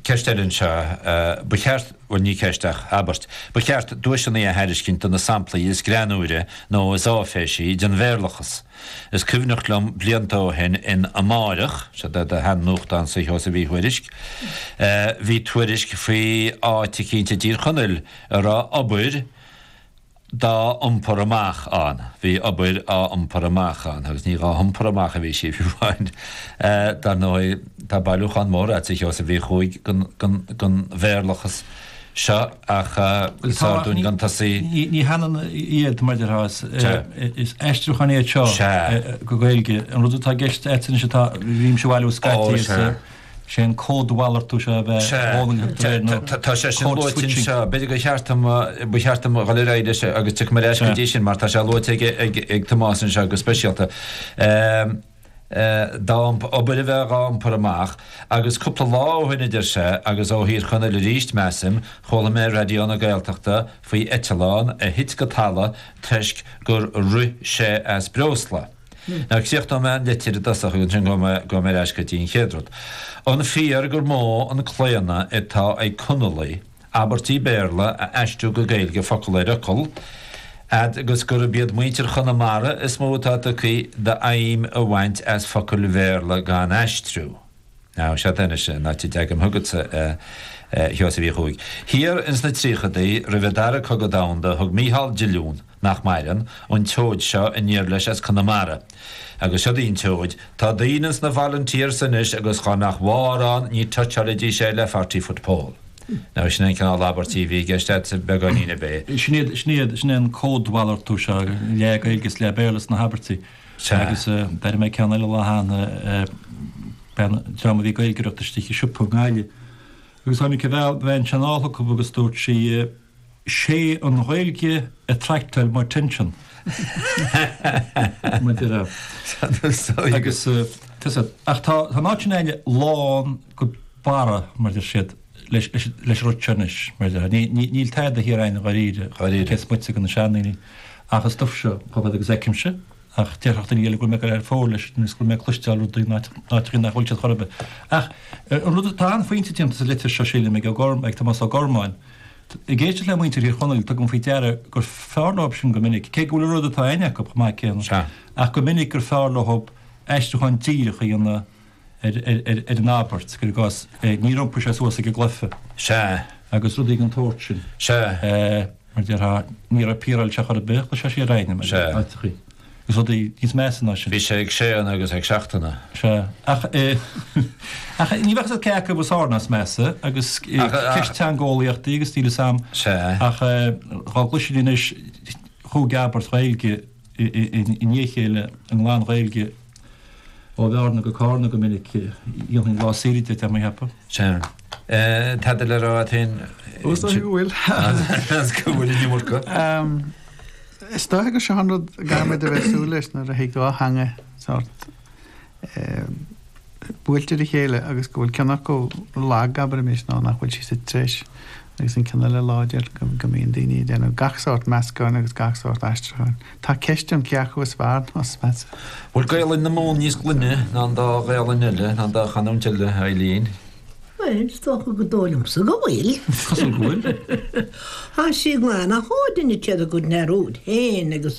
Ceist eile anseo, ba cheart, bhuel, ní ceist ach abairt, ba cheart duaiseanna a thairiscint do na samplaí is greannúire nó is áiféisí den Bhéarlachas. Is cuimhneach liom blianta ó shin in Amárach, seo é do shean-nuachtánsa a Sheosaimh Uí Thuairisg, bhí tuairisc faoi áit eicínt i dTír Chonaill a raibh obair dá iompar amach ann. Bhí obair á iompar amach ann agus ní dhá hiompar amach a bhí sí fiú amháin. Dar ndóigh, tá bailiúchán mór agat, a Sheosaimh, Uí Chuaig den Bhéarlachas seo ach is fearr dúinn gan tosaí. Ní hionann iad, mar a déarfá, is aistriúcháin iad seo go Gaeilge. An rud atá i gceist agat anois atá, bhímse a bailiú scaití is. Sé an códmhalartú seo a bheith ag dul in éineacht leis nó code switching. Tá sé sin luaite anseo. B'fhéidir gur cheart dom, ba cheart dom dhul ar aghaidh leis agus tiocfaidh mé ar ais go dtí sin mar tá sé luaite ag Tomás anseo go speisialta. Tá obair a bheith dhá iompar amach agus cúpla lá ó shin a deir sé agus ó Thír Chonaill aríst measaim, chuala mé ar Raidió na Gaeltachta faoi eitleán a thit go talamh toisc gur rith sé as breosla. Nó críochnóidh mé an litir i dtosach agus ansin gabhfaidh mé ar ais go dtí an chéad rud. An fíor gur mó an claonadh atá ag Conallaigh abairtí Béarla a aistriú go Gaeilge focal ar fhocal, fhad agus gurb iad muintir Chonamara is mó atá tugtha d'fheidhm a bhaint as focail Bhéarla gan aistriú? Now seod anois an áit a dteagaim chugatsa, a Sheosaimh Uí Chuaig. Thiar ins na tríochadaí, roimh an dara cogadh domhanda, thug Mícheál Diolún, nach maireann, an tseoid seo aniar leis as Conamara. Agus siod í an tseoid. Tá daoine ins na volunteers anois agus dhá mbeadh mórán ní touch-áilidís é le forty foot pole. Now sin é an cineál abairtí a bhí i gceist a'dsa beagáinín ar bith. Sin iad, sin iad, sin é an códmhalartú seo, leath-Ghaeilge is leath-Bhéarla sna habairtí. Sea. Agus d'airigh mé ceann eile an lá cheana, bean, dream a bhí ag Gaeilgeoireacht istigh i siopa i nGaillimh. Agus tháinig an bhean, bhean sin anall chucu agus dúirt sí, 'sé an Ghaeilge a d'attractáil m'attention. Maidir le. Agus, tusa, ach tá an áit sin againne lán go barra, mar a deir siad. leis an rud seo anois, mar dhea. Níl tada thiar aghainn dháiríre, cé is moite de na seandaoine, ach is é an cód seo chomh fada agus fheicimse, ach déarfadh daoine eile go raibh mé ag dul thar fóir leis nó is go raibh mé ag cloisteáil rudaí nach, nach bhfuil siad chor ar bith. Ach an rud, tá an-phointe déanta sa litir seo sílim ag ag Tomás Ó Gormáin. Ag éisteacht le muintir Thír Chonaill tugaim faoi deara gur fearr leob sin go minic, cé go bhfuil an rud atá a'inn acu chomh maith céanna, ach go minic gur fearr leob aistriúchán díreach a dhéanamh, ar an abairt, gur i gcás níor iompaigh sé suas ag an gcluiche. Sea. agus rudaí den tsórt sin. Sea. mar déarfá, ní raibh piaráilteach chor ar bith, chuir sé siar éinne, mar a dúirt sé. Agus rudaí níos measa ná sin. Bhí sé ag séanadh agus ag seachaint. Sea. Ach ach ní bheadh fhios aici cé acu is fearr nó is measa agus ceist teangeolaíochta agus stíle san. Sea. Ach dhá gcloisfinn anois dhá abairt Ghaeilge. i ndiaidh a chéile i nglan Ghaeilge ó Bhearna go Carna go minic. Dhéanfainn lá saoire de, táim a cheapadh. Chan. Tada le rá a't fhéin. Ó, 's dóigh go bhfuil. Is go bhfuil in imirce. Is dóigh go sin rud go mbeadh do bheith ag súil leis nuair a thig dhá theanga sórt buailte le chéile agus go bhfuil ceann acu lag, abraimis, nó nach bhfuil sí sa treis, agus an ceann eile láidir, go mbíonn daoine ag déanamh gach sórt meascáin agus gach sórt aistriúcháin. Tá ceist ann cé acu is fearr, nó is measa. Bhfuil Gaelainn na Mumhan níos glaine ná an dá Ghaelainn eile, ná an dá chanúint eile, a Eileen? Bhuel, is dócha go dóigh liomsa go bhfuil. Is cosúil go bhfuil. Tá sí glan ach ó duine céad a gcuid ar úd féin agus